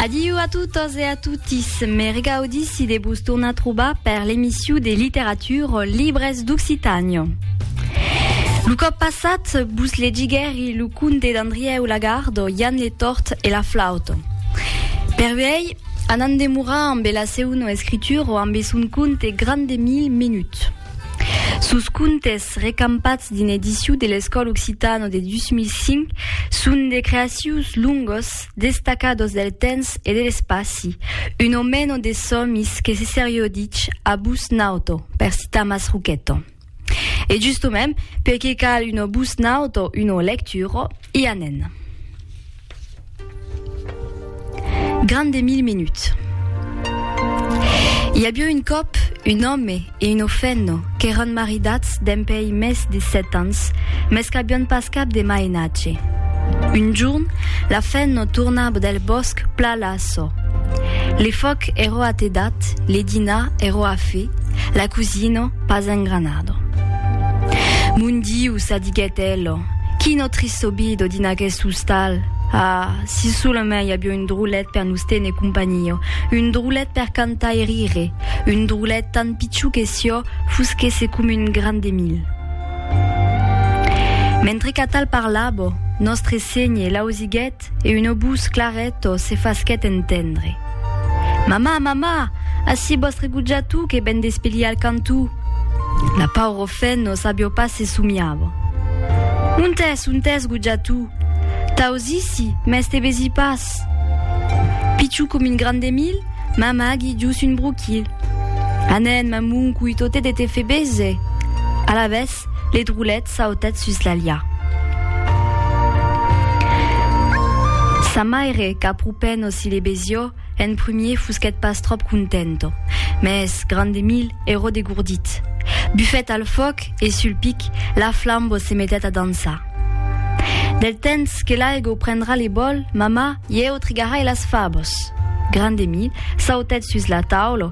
Adiu a totes e a totis. Me regaudissi de vos tornar trobar per l'emission de littérature libres d'Occitània. Lo cop passat, vos legiguèri lo conte d'Andrièu Lagardo, Jan le Tort e la Flauta. Per uèi, anam demorar ambe la seuna escritura, ambe son conte Gran de mil minuts. Sos contes, recampats dins l'edicion de l'Escòl Occitano de 2005, son de creacions longos, destacados del temps e de l'espaci, un o meno de sòmis que se serioditz a bus nauto, per citar Masruchetto. E justomèm, perqué cal un o bus nauto, un o lecturo, i a nen. Gran de mil minuts. I avió un còp un òme e un ofenno qu'èran maridats dempèi mès de sèt ans, mès qu'avión pas cap de mainatge. Un jorn, la fenno torna del bòsc pla la çò. Le fòc èrò atedat, le dinar èrò a fe, la cosino pas engranado. Mon Diu, ça diguèt elo, Quina trista vida dins aqueth ostal! Ah, si solamai avió un drolet per nos téner companhia, un drolet per cantar e rire, un drolet tant pichó que sió fosquèsse com un gran de mil! Mentre qu'atal parlava, Nòstre Sénher l'ausiguèt, ret e un obús claret o se fasquèt entendre. Mamà, mamà, ací vòstre gojatu que ven d'espelhir al cantó! La pauro fen o sabió pas se somiava. Ont es, ont es, gojatu? T'ausissi, mès te vesi pas. Pichu com un gran de mil, mamà g'i dus un broquil. Anèn, mamon, coi totè de te fe bese. Alavetz, le drolet, Sautèt sus l'alha. Sa maire, qu'apropènt o si le besió, en prumier fusquèt pas tròp contento. Mès, grand Emile, eró degordit. Bufèt al fòc e, sul pic, la flambo se metèt a dançar. Del tens que l'aigo prendrà le bòl, mamà, ieu trigarai las fabos. Grand Emile, sautèt sus la taula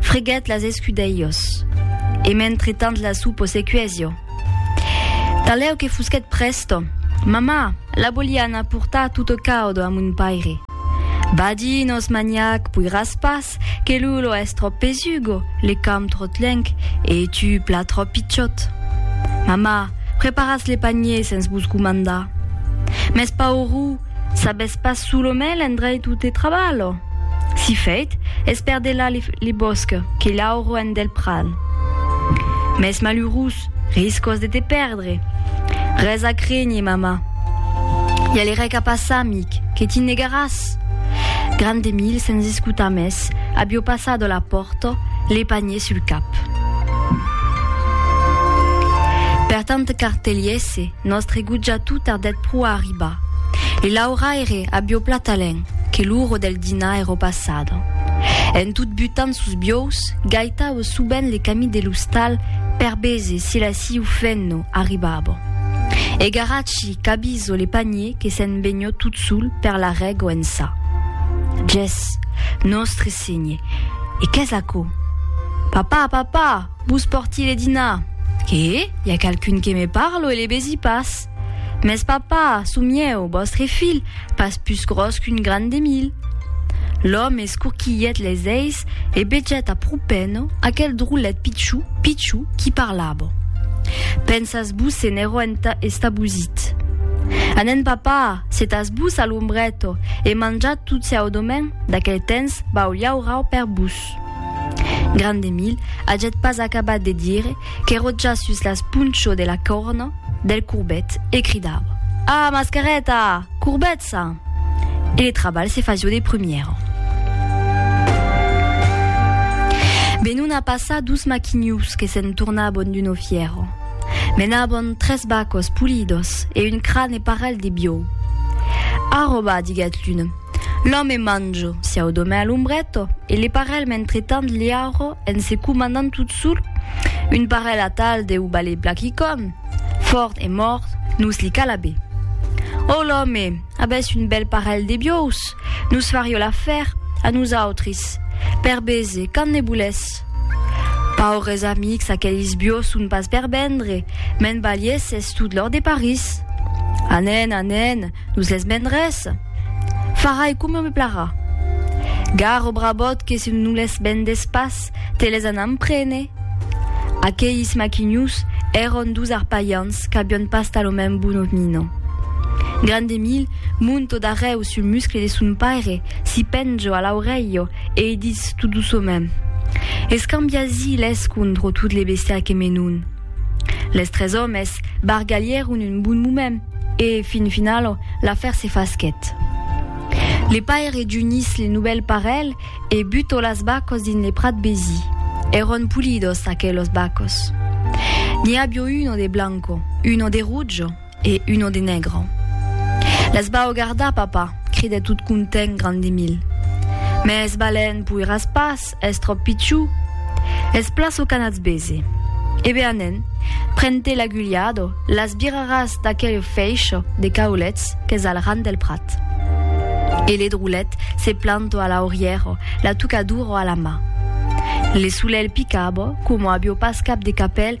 Freguèt las escudelhos, e mentre tant la su posecuesio. Talèu que fusquèt presto, Mamà, la voliá anar portar tutto caudo a mon paire. Badinos, maniac, poiràs pas, que Lulo es tròp pesugo, le camp tròt lenc, e tu pla tròp pichòt. Mamà, preparatz le panier sens vos comandar. Mès paurou! Sabes pas sus lo mai l'endreit ute trabalho? Si fèit, es per delà le bòsc que l'auro en del prat. Mès malurós, riscos de te pèrdre. Res a crénher, mama. I a le rèc a passar, amic, que ti negaràs. Grand Emil, sens escotar mès, abió passado la pòrta, le panier sul cap. Per tant qu'artelhèsse, Nòstre gutja tu tardèt pro a arribar. Li lauraire abiò platalèn que l'uro del dinar èrò passada. En tot butant sos biòus, gaitaue subent le camí de l'ostal per bese si la siu fenno arribava. E Garaci cabiso le panier que se'n veniò tot sol per la règo ençà. Ges! Nòstre Sénher! E qu'es aquò? Papà! Papà! Vos pòrti de dinar. Qué? I a qualqu'un que me parle o le besi pas? Mès papà, çò mieu, vòstre filh, pas pus gròs qu'un gran de mil. L'òme escorquilhèt les eis e bejèt a propèno aquel drollet pichou, pichou qui parlava. Pensas vos se n'èro enta estabosit. Anèn papà, setas vos a l'ombrèto e manjat tot çeu domen d'aquel tens vau llaurau per vos. Ròtjasus. Grandemil aget pas acabat de dire que Ròtjasus las ponchò de la còrna del Courbet e cridava, Ah, mascareta! Courbet ça! E le trabalh se fasió de prumièra. Benun a passar dus maquinius que se'n tornabon d'una fièra. Menabon tres bacos polidos e un crane parelh de biòu. Arròba, diguèt l'un. L'òme manjo, siau domè a l'ombrèto, e le parèl mentretant liauro en se comandant tot sol, un parèl atal deu balé Blackicon, fòrt e mòrt, nos li cala be. Ò l'òme, abès un bèl parèl de biòus, nos fario l'afèr, a nosautres, per bese, quand ne bolès. Paures amics, aquelis biòus son pas per vendre, me'n balièsses tot l'òr de París. Anèn, anèn, nos les vendrès. Farai coma me plairà. Gar o brabòt que se non les vendes pas, te les anam prene! Aqueis maquinhos èron dus arpalhants qu'avián pas tal o mèn bon opnino. Grand Emil mont o darrèu sul muscle de son paire, s'i penjo a l'aurelho e i ditz tot doçomèn, Escambiasi-les contro tot le bestiar que me non. Les tres òmes bargalhèron un bon moment e, fin finalo, l'afèr se fasquèt. Le paire junís le novèl parelh e butò las bacos dins le prat besi. Èron pulidos, aquelos bacos. N'i abió uno de blanco, uno de rojo, e uno de negro. Les vau gardar, papa, cridèt tot content Grandemil. Mès balèn poiràs pas, es tròp pichu. Es plaço qu'anatz bese. E be anèn, pren-te l'agulhado, las biraràs d'aquel fèisho de caulets qu'es al ran del prat. E le drolet se planto a l'aurièro, la tucaduro a la mà. Le solelh picabo, coma avió pas cap de capèl,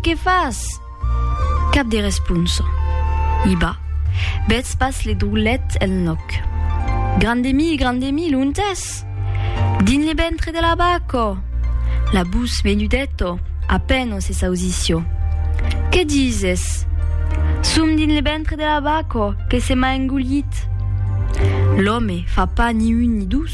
Que fas? Cap de responsa. I ba, betz pas le drollet el nòc. Gran de mi, gran de mi, l'ont es? Dins le ventre de la bac, ò! La bus menudèt, ò! A pèn se sausissi, ò! Que dises? Som dins le ventre de la bac, ò, que se m'a engollit. L'òme fa pas ni un ni dos.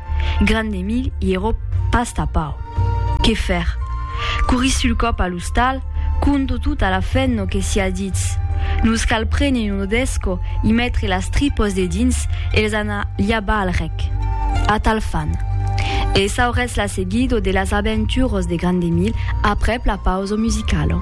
Grand Emil i ero pas tapau. Qué fèr? Couri sul còp a l'ostal, conto tot a la fen no que siá ditz. Nos cal prene un odesco i metre las tripos de dins e les anar liabar al rec. Atal fan. E s'auretz la seguido de las aventuros de Grand Emil aprèp la pauso musicalo.